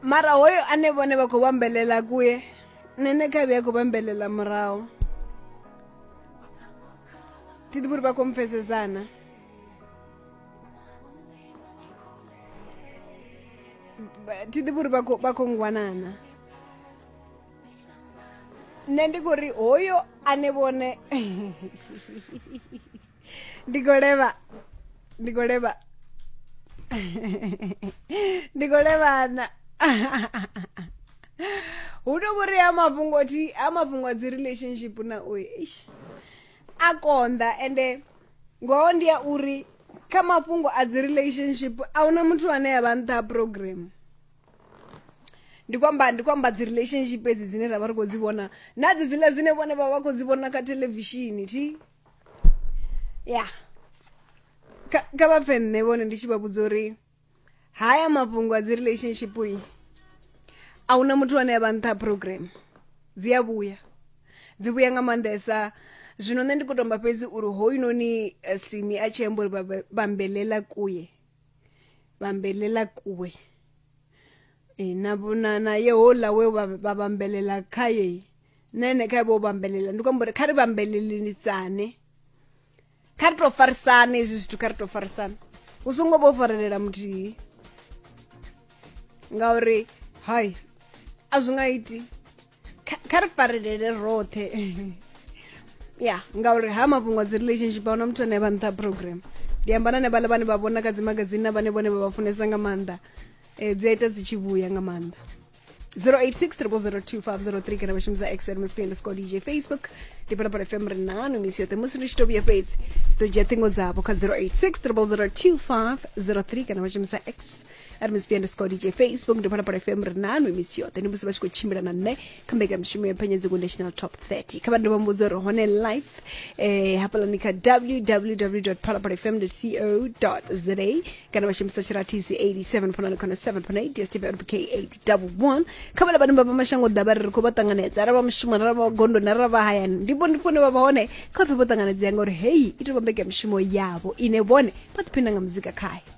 mara hoyo ane vhone vha khou vhambelela kuye nṋe ne kha vhuya khou vhambelela murahu thi ḓivhi uri vha khou mpfesesana thi ḓivhi uri vha khou ngwanana nṋe ndi khou ri hoyo ane vhone ndi khou levha ndi khou levha ndi khou levhana hu to vhori a mafhungo thi a mafhungo a dzi relationship na uyu ish a konḓa ende ngoho ndi ya uri kha mafhungo a dzi relationship a huna muthu ane ya vha nṱha ha program ndi kwamba ndi kwamba dzi relationship edzi dzine ra vha ri khou dzi vhona na dzi dzila dzine vhone vha vha khou dzi vhona kha televishini thi ya kha kha vha pfe nṋe vhone ndi tshi vha vhudza uri haya mafhungo a dzi relationship i a huna muthu ane a vha nṱha program dzi a vhuya dzi vhuya nga maanḓesa zwino nṋe ndi khou tomba fhedzi uri hoyunoni eh, simi a tshi amba uri vha- vha- vhambelela kuye vhambelela kuwe e, na vhona na yehola we vha vha vhambelela khaye na ene khae vho vhambelela ndi khou amba uri kha ri vhambelelelisane kha ri tou farisane hezwi zwithu kha ri tou farisane u songo vho farelela muthihi ngauri hai a zwi nga iti kha kha ri farelele roṱhe ya ngauri ha mafhungo a dzi relationship ahuna muthu ane vha nṱha program ndi amba na ne vhaḽa vhane vha vhona kha dzimagazini na vhane vhone vha vha funesa nga maanḓa um dzi a ita dzi tshi vhuya nga maanḓa 0863002503 kana vha shumisa x msp underscore dj facebook ndi phalaphala fm ri nanu misi yoṱhe musi ndi tshi to vhuya fhedzi ḓo dzhia ṱhingo dzavho kha 0863002503 kana vha shumisa x ari mcp underscore dj facebook ndi phalaphala fm ri nanu emisio then musi vha tshi khou tshimbila na nṋe kha mbekamishumo ya phenyedziko national top 30 kha vha ndi vha mbudza uri hone life eh, hafhalani kha www phalaphala fm co za kana vha shumisa tshiratisi 87 ponani khona 7 pona 8 dstv rpk 811 kha vhala vhane vha vha mashango ḓavha ri ri khou vha ṱanganedza arali vha mushumo arali vha gondoni arali vha hayani ndi vhone fone vha vha hone kha pfe vho ṱanganedzea ngauri heyi i tou vha mbekamishumo yavho ine vhone vha ḓiphina nga muzika khayo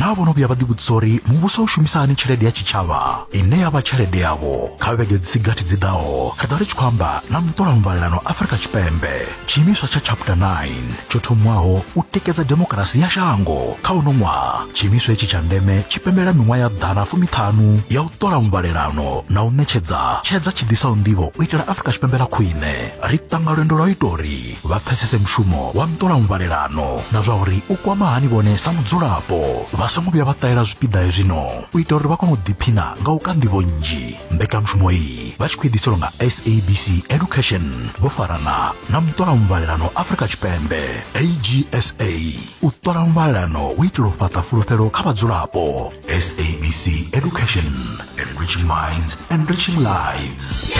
naa vho no vhuya vha ḓivhudzisa uri muvhuso u shumisa hani tshelede ya tshitshavha ine ya vha tshelede yavho kha vhege dzi si gathi dzi ḓaho ri ḓo ri tshi khou amba na muṱola muvhalelano afurika tshipembe tshiimiswa tsha chapter 9 tsho thomwaho u tikedza demokirasi ya shango kha uno ṅwaha tshiimiswa hetshi tsha ndeme tshi pembela miṅwaha ya ḓana fumiṱhanu ya u ṱola muvhalelano na u ṋetshedza tshedza tshi ḓisaho nḓivho u itela afurika tshipembe ḽa khwine ri ṱanga lwendo lwa u ita uri vha pfesese mushumo wa nṱolamuvhalelano na zwa uri u kwama hani vhone sa mudzulapo vha songo vhuya vha ṱalela zwipiḓa hezwino u itela uri vha kone u ḓiphina nga u ka nḓivho nnzhi mbekanyamushumo iyi vha tshi khou ḓiselwa nga sabc education vho farana na muṱolamuvhalelano afrika tshipembe agsa u ṱola muvhalelano u itela u fhaṱa fulufhelo kha vhadzulapo sabc education enriching minds enriching lives